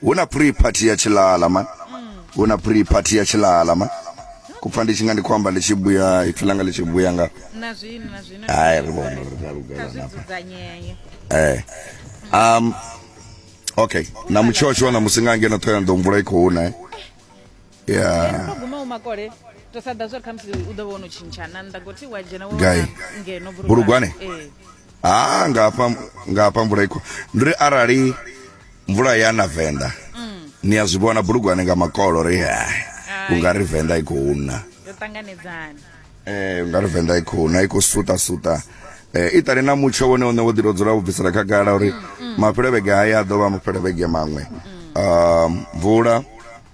hu na pre party ya tshilala man hu na pre party ya tshilala man kupfa ndi tshi nga ndi khou amba ndi tshi buya ipfi langa ḽi tshi buya nga na zwino na zwino hai ri vhona uri ri a kha lugela zwi nafha dzudzanyee eh um okay na mutshotsho na musi nga ngeno ṱhoyana ḓo mvula i khou na eh yeah so guma umakole to sa ḓa zwa ri khamusi u ḓo vha ono tshintsha na nnḓa goti wa dzhena wo Gai? wana ngeno Bulugwane? Eh. ha nga hafha nga hafha mvula ikho ndi ri arali mvula ya na venḓa ni a zwi vhona bulugwane nga makolo ri hai u nga ri venḓa i khou na yo ṱanganedzana eh u nga ri venḓa i khou na i khou suta suta eh i ṱali na mutsho wone une wo ḓi to dzula wo bvisela khagala uri mafhelevhege haya a ḓo vha mafhelevhege maṅwe um mvula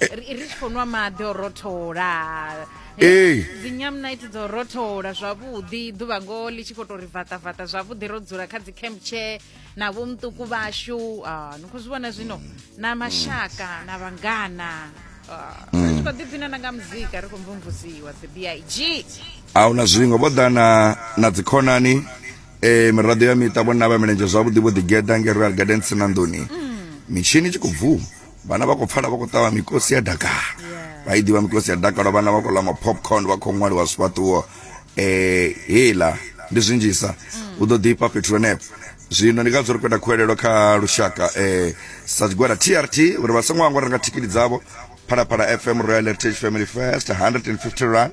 ri ri tshi khou nwa maḓi o rothola Ee. dzinyamnite dzo rothola zwavhuḓi ḓuvha ngoho ḽi tshi khou tou ri vaṱavaṱa zwavhuḓi ro dzula kha dzi camp chair na vho muṱuku vhashu ah, ni khou zwi vhona zwino na mashaka na vhangana Ah, ri tshi khou ḓiphina na nga muzika ri khou mvumvusiwa the big a hu na zwiṅwe vho ḓa na na dzikhonani eh miraḓo ya miṱa vhona vha milenzhe zwavhuḓi vho ḓigeḓa nge royal gardens na nḓuni mitshini i tshi khou bvuma vhana vha khou pfala vha khou ṱavha mikosi ya dakalo vha i ḓivha mikosi ya dakalo vhana vha khou ḽa mapopcorn vha khou ṅwaliwa zwifhaṱuwo eh hela ndi zwinzhisa u ḓo ḓifha fhethu henefho zwino ndi ngazwo ri khou ita khuwelelo kha lushaka eh sa tshigwada trt uri vha songo hangwa renga thikhithi dzavho phalaphala fm royal heritage family first 150 rand